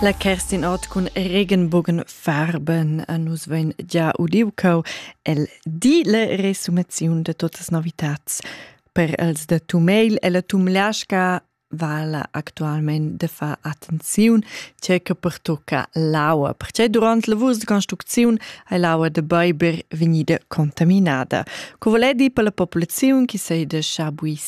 La Kerstin Ort cun Regenbogen farben a nus vegn già udiu cau el di la resumaziun de totas novitats. Per els de tu mail e la tu mliasca vala actualment de far attenziun c'è che pertocca l'aua, perché durant la vus de construcziun hai l'aua de Beiber vegnida contaminada. Co volei di per la popolazione che sei de Schabuis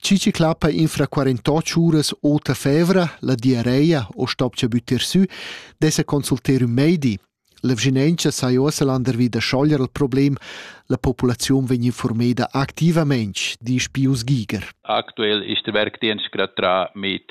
Chi chi clappa infra 48 uras ota fevra, la diarreia o stopcha büttir sü, dessa consulter ün meidi. L'evgenentscha sai ossa landervi da schoglier il problem, la populaziun vegn informada activament, disch Pius Giger. Aktuell ist der Werkdienst gerade dran mit